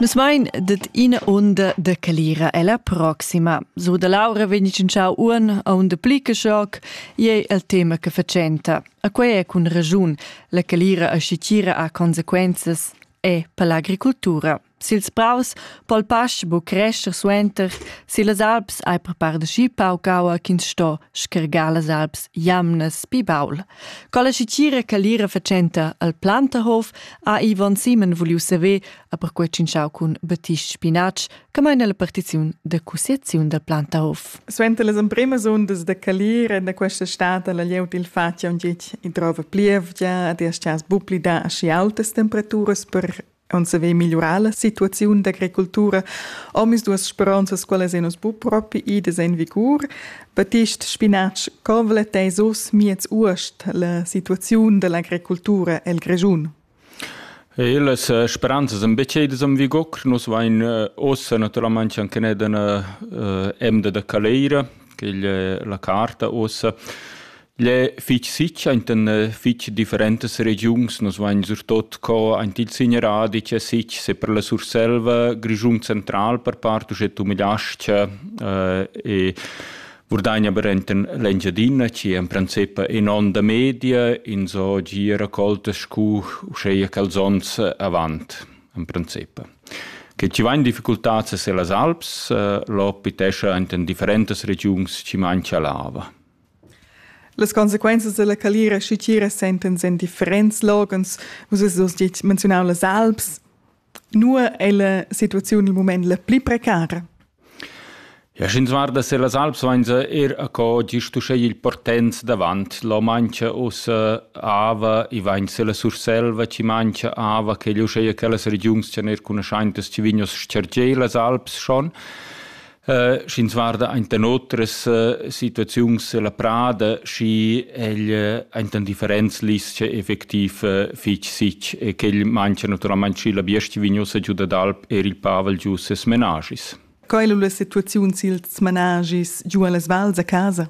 Nus vein det ina unda de calira ella proxima. So da Laura vegn tschintschau uon a un de Plickeschock, ei el tema che facenta. A quei è cun ragiun. La calira aschi tira ha consequenzas e per l'agricoltura. Sils praus pol pasch bu crescer suenter, si las alps hai per par de schi paucaua ch'ins sto schergar las alps jamnas pi baul. Quella schitgira che l'ira fatschenta al Plantahof ha Ivan Simen vuliu saver a per quei tschintschau cun Batisch Spinatsch che meina la partiziun da cussiaziun dal Plantahof. Suenter las empremas undas da calira da questa stad ha la glieud il fatg aunc gitg e drova plievgia ed eschas buplida aschi altas temperaturas per onn se vei migliurar la situaziun d'agricultura. Omis duas speronzas quelles en bu propi ides en vigur. Batist Spinatsch convelet ei sus miez uost la situaziun dell'agricultura el Grejun. E las eh, speranzas ein beceidas am vigor. Nus vain eh, ossa naturalmente anche ned an eh, emda da Caleira, che la carta ossa Igl è fitg sitg enta fitg differentas regiuns. Nus vain surtot co aint il Signeradi c'è sitg, se per la Surselva, Grischun central per part, uschè tumidas-cha eh, e Vurdagna aber enten l'Engiadina, ci en princip in onda media, in so gi raccoltas scu uscheia calzons avant, en princip. Che ci vain difficultats se las Alps, eh, lo pitescha enten differentas regiuns ci mancha lava. Las consequenzas dalla calira schitgira sentens en differents loghens. Vus has dus detg menziunau las Alps. Nua è la situazione il moment la pli precara? Ja, sch'ins guarda sur las Alps, vainsa er a co gisto sche il portens davant lo mancha us ava e vainsa la Surselva ci mancha ava che gliu scheia quellas regiuns c'en er cunoscientas ci vignos scergei las Alps schon. Uh, sch'ins guarda enten otras uh, situaziuns la prada, schi egl uh, enten differents lis effectiv uh, fich sich e quel mancha naturalmente schi la biestia vignosa giu dad alp er il pavel giu ses menagis. Quai lu la situaziun sils managis giu allas vals a casa?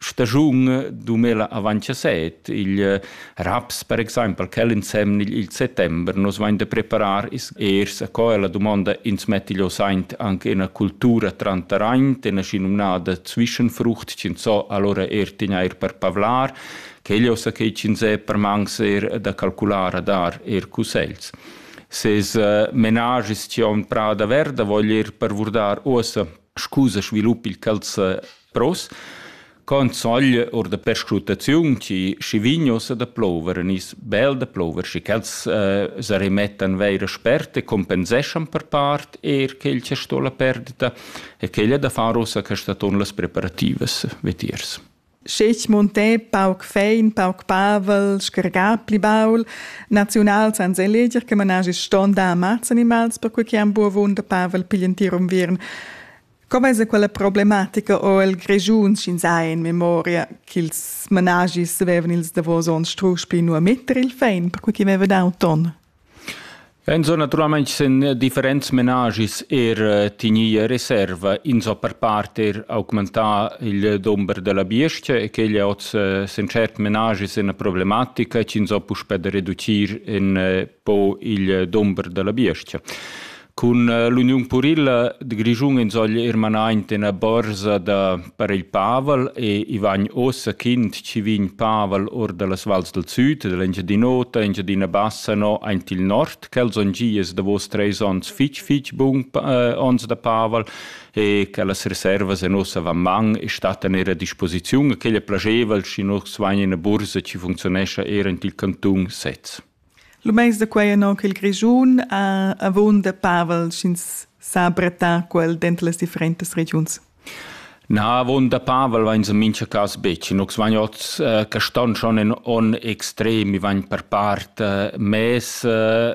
stagiun 2017, il raps per exempel, quel insem il settember, nos vain da preparar is ers a co la domanda ins metti lo saint anche in cultura trantaraint, in aschi nominada Zwischenfrucht, cin so allora er tegnair per pavlar, quello sa che cin se per mangs er da calcular a dar er cussels. Ses uh, menagis ci on prada verda, vogl ir per vurdar ossa scusa svilupp il calza Pros con sogl or da perscrutaziun chi schi vignos da plover nis bel da plover schi ch'els eh, se rimettan veira sperte compenseschan per part er quel che sto la perdita e quella da far ossa che staton las preparativas vetiers. Schech monté pauc fein, pauc pavel, schergà pli baul, naziunal sans eleger che managi ston da ammazza animals per quei che han buovun da pavel piglien tier unviern. Com esa quella problematica o el Grischun sch'ins ha in memoria ch'ils managis avevan ils davos ons strusch pli nu a metter il fein, perque chi veva dau ton? Enzo naturalmaing sen differents menagis er eh, tignia reserva, inso per part er augmentà il dumber della biestia e quegli oz eh, sen cert menagis in problematica, c'inso puspè da reducir in eh, po il dumber della biestia. Cun l'uniun purilla de Grischun insogl er manaint ina borsa da per il Pavel e i vagn ossa kind ci vin Pavel or dallas vals del süd, dell'Engiadin'Ota, Engiadina Bassa no aint il nord, quels on gies davos treis ons fitch fitch bun äh, ons da Pavel e che las reservas en ossa van man e stattan er a disposiziun, e quella plageva, schi nus vain in a bursa ci funzionescha er int il canton sez. Lu meins da quei annon ch'il Grischun ha avunda pavel sch'ins sa brattar quel denter las differentas regiuns. Na, avunda pavel vains en mincha cas betg. Nus vain oz eh, caston schon in onn extrem, i vain per part eh, mess eh,